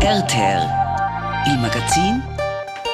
RTL, il magazin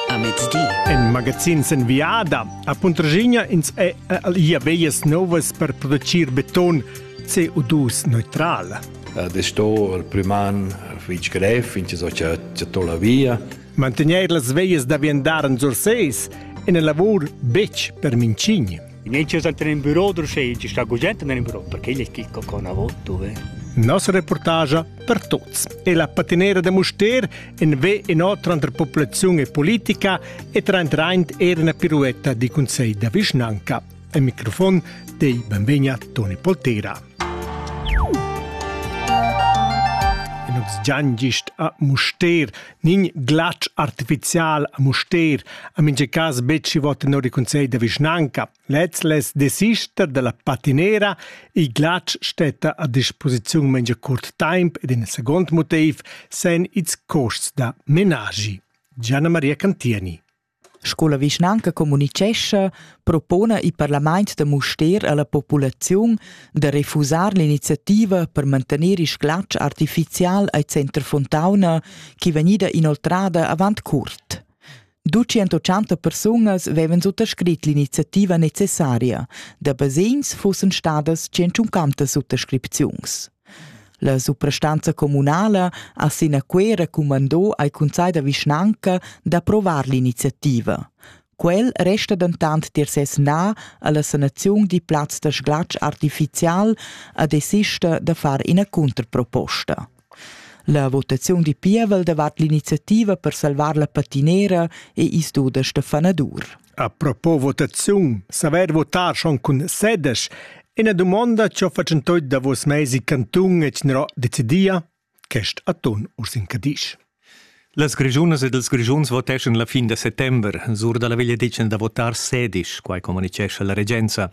a mezdi. In magazin sin viada a Puntraschigna ins è ia veias novas per producir beton CO2 neutral. Ed è sto il priman fitg grev, fin che so c'è la via. Mantener las veias da viandar en Surseis è una lavur betg per Mincigni. In entschet a tener in büro d'urschelgia sta gugent nel büro perché igl è chi co navot dove. Nossa reportage per tuts è la patinera da Muster in ve in otra entre popolazione e politica e traint era una piruetta di consegl da vischnanca. Al microfon dei benvegna Toni Poltera. In ox giangist a Muster Nin glatsch artificial a Mustér ha mincha cas betg gnü vot tenor il cunsegl da vischnanca. Lez less desister da la patinera. Il glatsch stetta a disposiziun mincha curt taimp ed in seguond motiv sen ils cuosts da menaschi. Gianna Maria Cantieni Sco la vischnanca communitgescha propona il parlament da Mustér alla populaziun da refusar l'iniziativa per mantener il sglatsch artificial al Center Fontauna chi vegnida inoltrada avant cuort. 280 persunas vevan suttascrit l'iniziativa necessaria, da basegns fussen stadas 150 suttascripziuns. La suprastanza communala ha sin a Cuera cumandò ai cunsai da vischnanca d'approvar l'iniziativa. Quel resta dentant tier ses na alla sanaziun di plaz da sglatsch artificial a desista da far ina contraproposta. La votaziun di pievel davart l'iniziativa per salvar la patinera e isduda Stefana Dur. A propos votaziun, saver votar schon cun sedes, ina dumonda che ho fatschentoi davos meis il cantun e c'n'ero decidia, quest atun urs in Cadisch. Las Grischunas ed ils Grischuns voteschan la fin da settember. Sur dalla veglia ditgen da votar sedisch, quai communicescha la regenza.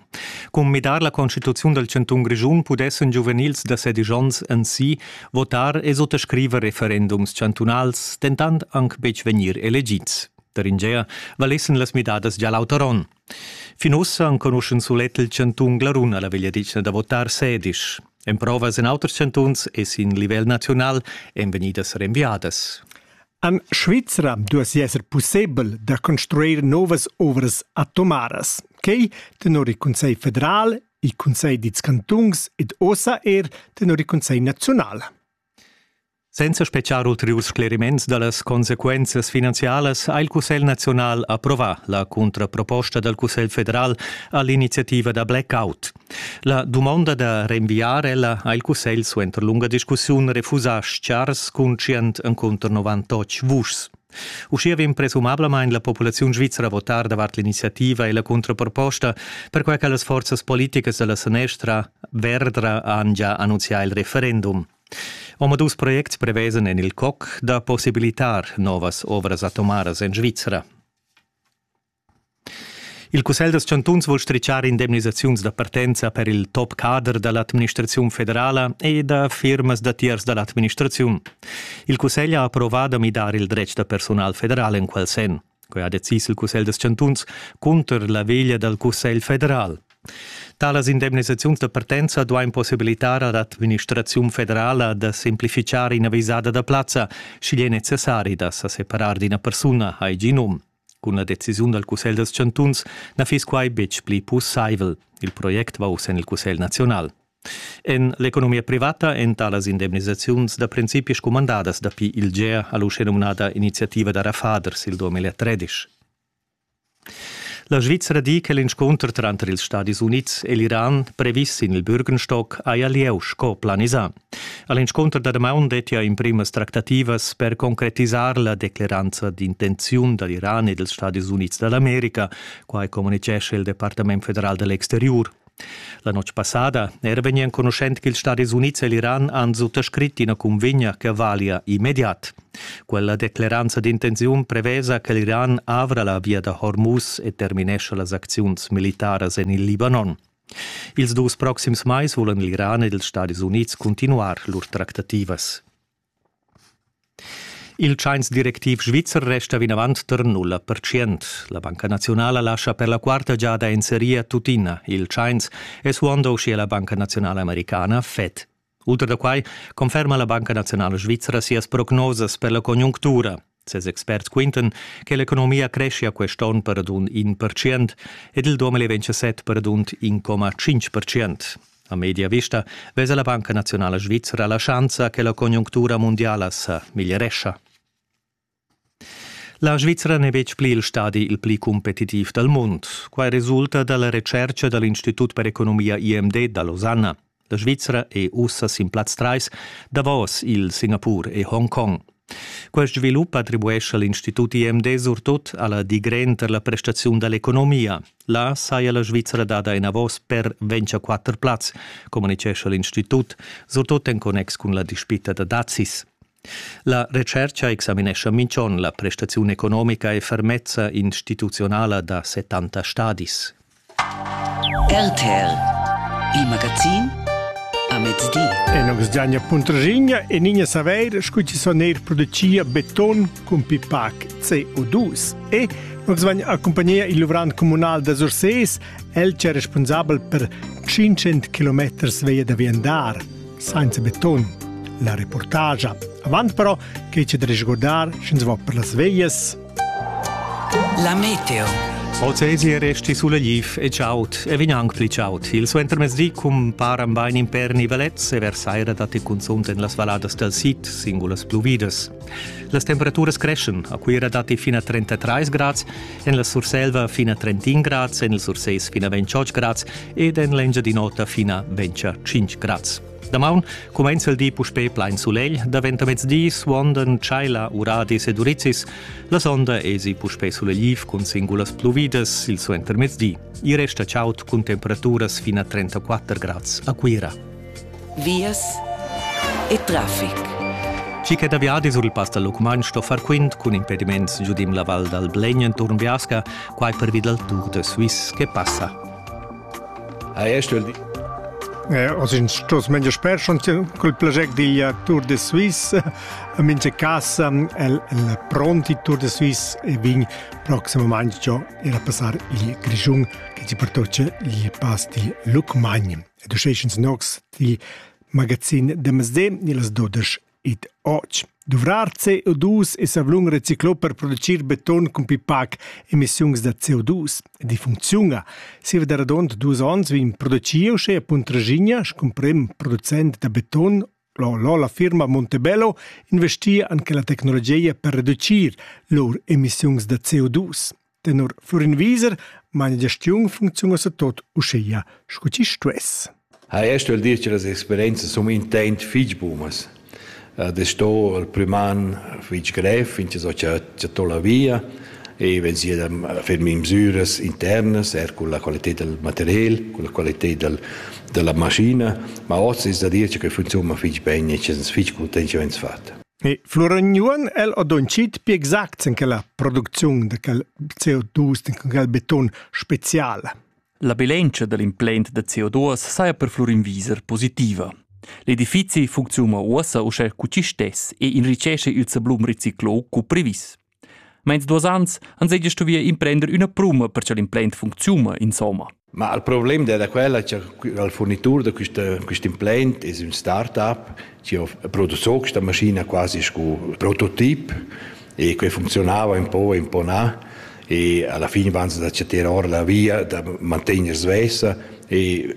Cun midar la constituziun dal cantun Grischun pudessan giuvenils da sedisch onns en si votar e suttascriver referendums chantunals, dentant anc betg vegnir elegids. Taringea valessen las midadas gia l'auter onn. Fin ussa enconuschen sulet il chantun Glarun alla vegliadetgna da votar sedisch. Emprovas en auters chantuns e sin livel naziunal èn vegnidas renviadas. An Svizra duessi esser pussebel da construir novas ovras atomaras. Quei tenor il Consiglio federal, il Consiglio dils cantuns ed ossa er tenor il Consiglio nazional. Senza speziar ulteriurs scleriments dallas consequenzas finanzialas ha il Cussegl nazional approvà la contraproposta dal Cussegl federal all'iniziativa da blackout. La dumonda da renviar ella ha il Cussegl suenter lunga discussiun refusà schars cun 198 vuschs. Uschia vegn presumablamain la populaziun svizra a votar davart l'iniziativa e la contraproposta, perquai che las forzas politicas da la sanestra Verdra han già annunzià il referendum. Omadus projects prevesan en il COC da possibilitar novas ovras atomaras en Svizra. Il Cussegl dals chantuns vul stritschar indemnisaziuns da partenza per il top cader da l'administraziun federala e da firmas da tiers da l'administraziun. Il Cussegl ha approvà da midar il dretg da personal federal en quel senn. Quai ha decis il Cussegl da chantuns cunter la veglia dal Cussegl federal. Talas indemnisaziuns da partenza duain possibilitar ad l'administraziun federala da semplificar ina visada da plazza, sch'igl è necessari da sa separar d'ina persuna, hai gì num. Cun la decisiun dal Cussegl da chantuns na fiss quai betg pli pussaivel. Il project va uss en il Cussegl naziunal. En l'economia privata èn talas indemnisaziuns da principi scumandadas dapi il GEA ha l'uschenumnada iniziativa da Rafaders il 2013. La Svizra di che l'inscunter tranter ils Stadis Unids e l'Iran, previs sin il Bürgenstock, haja lieu sco planisà. A l'inscunter da damaun dettia in primas tractativas per concretisar la decleranza d'intenziun da l'Iran e dals Stadis Unids da l'America, quai communitgescha il Departament federal dell'exteriur. La notg passada era vegni enconuschent ch'ils Stadis Unids e l'Iran han suttascrit ina cunvegna che valia immediat. Quella decleranza d'intenziun prevesa che l'Iran avra la via da Hormuz e terminescha las acziuns militaras en il Libanon. Ils dus proxims mais vulan l'Iran ed ils Stadis Unids continuar lur tractativas. Il tschains directiv svizzer resta vinavant tar nulla pertschient. La Banca naziunala lascha per la quarta giada inserir tuttina il tschains, suando uschia la Banca naziunala americana Fed. Ultra da quai conferma la Banca naziunala svizra sias prognosas per la conjunctura. Ses experts quintan che l'economia creschia quest onn per radund in percient ed il 2027 per radund 1,5 percent. A media vista vesa la Banca Nazionala Svizra la schanza che la conjunctura mundiala sa miglierescha. La Svizra n'è betg pli il stadi il pli competitiv dal mund. Quai resulta da la retschertga da l'Institut per economia IMD da Losanna. La Svizra è ussa sin plaz 3 davos il Singapur e Hongkong. Quest svilup attribuescha l'Institut IMD surtut a la digren per la prestaziun da l'economia. Là saja la Svizra dada enavos per 24 plaz, communitgescha l'Institut, surtut en connex cun la dispita da dazis. La retscherca examinescha minch'on la prestaziun economica e fermezza instituzionala da 70 stadis. RTL Il magazin a mezdi. E nos giagna puntrigna e nigna saveir scu ci son eir producia beton cun pipac CO2. E nos vagn accompagnia il luvrant comunal da Surses, el c'è responsabel per 500 km veia da viandar, senza beton. La reportagia. Avant però che ci da risguardar, sch'ins va per las veias. La meteo. Ozesi resti sulla glif e ciaut e vegn anc pli ciaut. Il suentermezdi cumparan bain in per nivelets e versaira datti cunzunt en las valladas dal sid singulas pluvidas. Las temperaturas creschen. A Cuira datti fin a 33 grads, en la Surselva fin a 31 grads, en il Sursés fin a 28 grads ed en l'Engiadin'Ota fin a 25 grads. Damaun cumainza il di puspè plain sulegl, daventa mezdi, suondan tschaila, uradis ed urizis. La sonda esi puspè sulegliv cun singulas pluvidas il suenter mezdi. I resta chaud cun temperaturas fin a 34 grads a Cuira. Vias e traffic. Chi che da viadi sur il pass dal Lucmagn sto far quint cun impediments giudim la val dal Blegn enturn Biasca, quai pervi dal Tour de Suisse che passa. Ha ei stuiu dir. Eh, oz in stos meglio sper schon col plascher digl Tour de Suisse a mince casa el el pronti Tour de Suisse e vin proximamente giò era passar il Grischun che ci pertoce gli pasti Lucmagn. E du schecens nox di magazin de Mesde ni las 12 id och. Duvrar CO2 es avlun reciclà per producir beton cun pipac emissiuns da CO2. Ed i funcziuna. Siva da radond duos ons vegn producieu uschè a Puntraschigna scu prem producent da beton L'Ola firma Montebello investia anche la tecnologia per reducir lur emissiuns da CO2. Tenor Florin Wieser meine Gestiun funcziunasse tot uschia, sco ci stuess. Ha esto il dir che las experienze sono intent fich bumas. Das sto il priman fich grev, finché so che to la via e wenn sie dann fermi in misures internas, er con la qualità del material, con la qualità del, della macchina, ma oss ist da dir che funziona fich bene e che es fich content, wenn es fatto. E Floragnuon el ho donchit pü exacts in quella producziun da quel CO2, in quel beton special. La bilantscha da l'implant da CO2 saja per Florinwieser positiva. L'edifizi funcziuna uossa uschè cu chi stess e enrichesce il sablun riciclò cu previs. Meins duos ans ans hegia stuvi imprender üna pruma per cha'l implant funcziuna insomma. Ma il problem è da quella che il fornitur da quest implant è un start-up che ha prodotto questa maschina quasi sco prototip e che funzionava un po' e un po' na e alla fine vanno da chattar ora la via da mantenere svesa e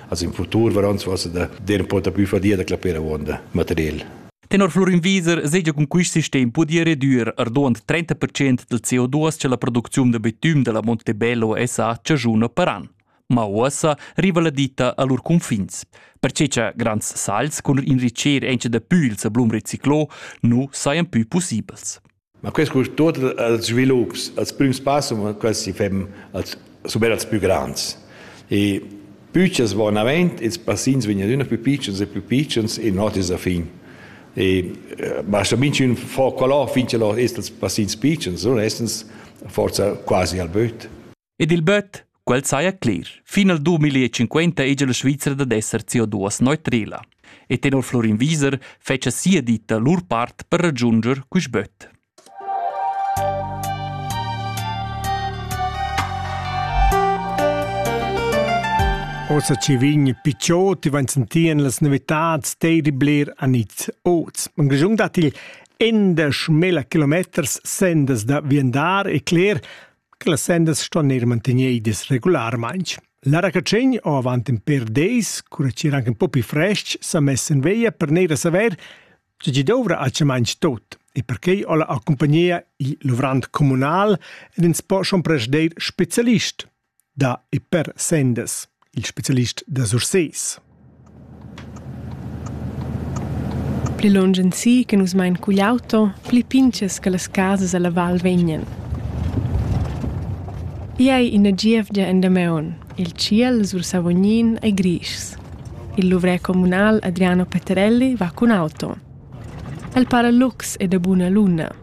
Als im futur varan su asa da der pota più fadia da clapera uonda material. Tenor Florin Wieser segia cun quist sistem pudia redüer arduond 30% del CO2 che la producziun de betüm della Montebello SA ciagiuna paran. Ma uossa riva la ditta a lur confins. Perché cha grands sals cun inricher enche da püls a blum reciclo nu sajan pü possibels. Ma quest curs tut als svilups, als prüms pass, quasi fem als suber als plü grands. E püchas van avant, ils passins vegnan üna più piccions e più piccions e notis a fin. E basta minchün fo quelò fin che lor est als passins piccions, non essens forza quasi al böt. Ed il böt, quel saja cler. Fin al 2050 ege la Svizra dad esser CO2 neutrela. E tenor Florin Wieser fetscha sia ditta lur part per raggiunger quist böt. Ossa ci vin piccioti van sentien las novitats teiri bler a niz oz. Man grejung dat il endasch mela kilometers sendas da viandar e cler che las sendas ston eir mantegnidas regularmaing. La racatschegn o avant in per deis, cura chi eran un po più fresc, s'ha mess in veglia per neir a saver che chi dovrà a chamainch tot e perché ho la accompagnia il luvrant comunal ed ins po schon presder specialist da e per sendas. il specialist da Sursés. Pli lunsch en si che nus mein cugl auto, pli pintgas che las casas alla val vegnan. I ei ina gievgia en Dameon. Il ciel sur Savognin ei grischs. Il luvrè comunal Adriano Peterelli va cun auto. El para lux e da buna luna.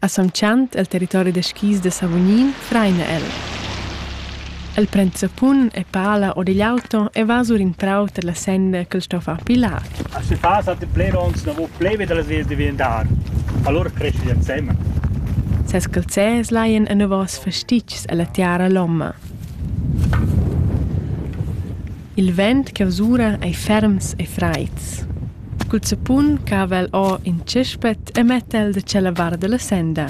A Samchant, el territori da skis da Savognin, fraina el. El prend zappun e pala or digl auto e va sur in prau tar la senda ch'el sto far pilar. A se fa satti plerons davo pleve dalla sedia diventar. Allora cresce instemma. Ses calzers laien enavos fastitgs ella tiara lomma. Il vent chi'vsura ei ferms e freids. Cul zappun cava el or in tschispet e metta el da tschella vart dalla senda.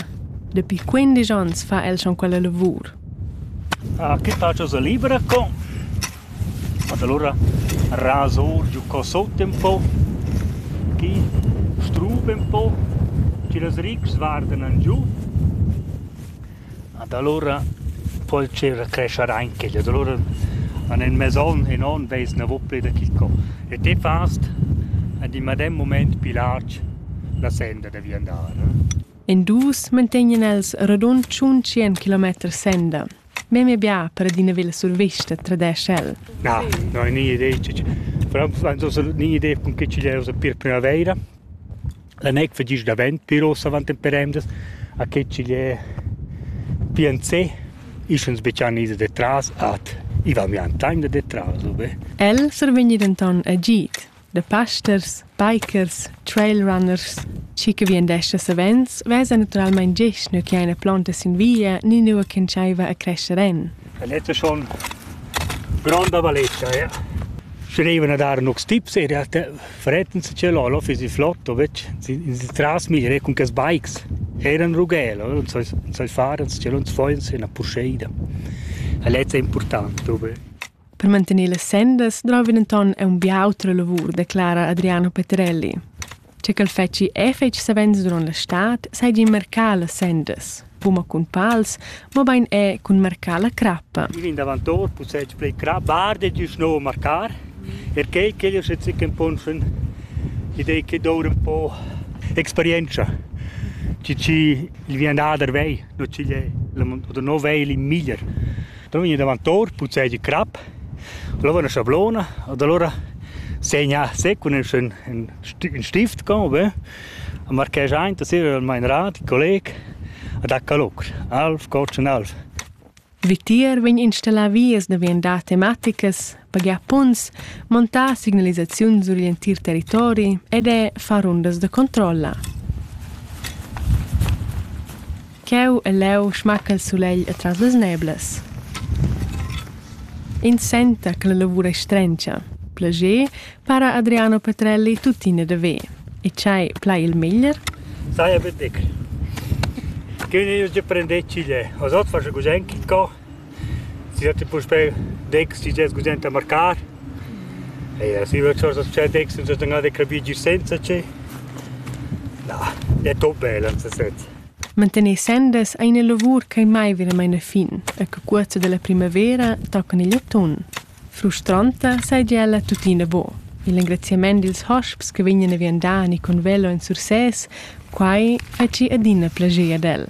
Dapi quindisch onns fa el schon quella lavur. Ah, che tacha sa libra co? Ed allura rasa or giu co sot un po, chi struba un po, chi las rics vardan an giu. Ad alura po'l tgira crescher aint quel. Ad alura an ün mes on e non vez navù plü da quist co. E te fast ad in medem mumaint pü larg la senda da viandar. In dus mantegnan els radund tschuntschien kilometer senda. Memia bia per adina villa survista, tradesch el. Na, no, nia idea. Però sto nin idea cun che chi'l era sta pir prümavaira. La nec vegnisch davent pir uss avant temp per emdas, a che ch'igl è PNC. Isch ans betschan ins detras ad i va mian tagn da detras ubain. El survegnì denton agid da pasters, bikers, trailrunners. Schi che vien d'esser savens, vesa naturalmein gest nua che eine plonta sin via ni nua ch'entscheiva a crescher en. El es schon gronda valetscha, ja. Schreivan a dar nox tips e realtà fretten se che lolo fisi flotto, vec in si tras mi re cun ques bikes. Eran rughel, non sai non sai far, se non foin se 'na purscheida. E lezza è important prope. Per mantener le sendas drovan enton a un bia autra lavur, declara Adriano Peterelli. Che ch'el fetschi effetg savens duront la stad seigien marcar las sendas, buca cun pals, mobein era cun marcar la crappa. Il vinavantort possessi plei crabbar de giu sno marcar, perché che io se zicken ponschen idei che doura un po experienza. Ci ci il vien da der vei, no ci è, oder no vei il miglier. Da vegni davantor, puzzegi crap, lova üna schablona ed alura segna sec cun ün stift co be, a marcher aint a sira al main rat, il colleg, a dà calur, alv, cotschen alv. Vitier vegn installà vias da viandar tematicas pagar punts, montar signalisaziuns sur l'entir territori ed è far rundas da controlla. Cheu e leu schmacca il sulegl atras las neblas. Ins senta che la lavur è strengia. Plager para Adriano Petrelli tuttina da ver. E c'hai plai il meglier? Sai betg. Che ne io prendetto le. Os otfasche gosenki co Si datti puspè decks chi gest gugent da marcar. Eir si üna chosa tschè decks nun s'ha gnanca capì gir senza che. Na, è tot bel ans set. Mantener sendas ei ina lavur ch'ei mai veramein a fin e che cuorza dalla primavera toccan igl atun. Frustranta seigi ella tuttina buc. Il engraziament dils hosps che vegnan a viandar ni con velo en Sursès, quai ha gi adina plascher ad el.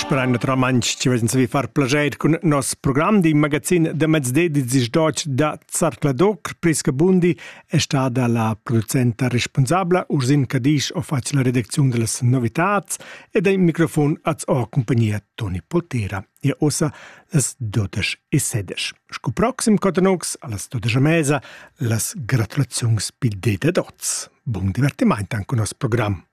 Sperain naturalmain ci vezin savi far plajet cun nos program di magazin da mezdi Deutsch da Zartladoc. Priska Bundi è stata la producenta responsabla Ursin Cadisch ho fatto la redazione delle novitats e dai microfon az ho compagnia Toni Potera. Ihr ossa las 12 e 16. Sco proxim cotanux allas todas a mesa las gratulaziuns pil dé dad oz. Bun divertimaint anche con nos program.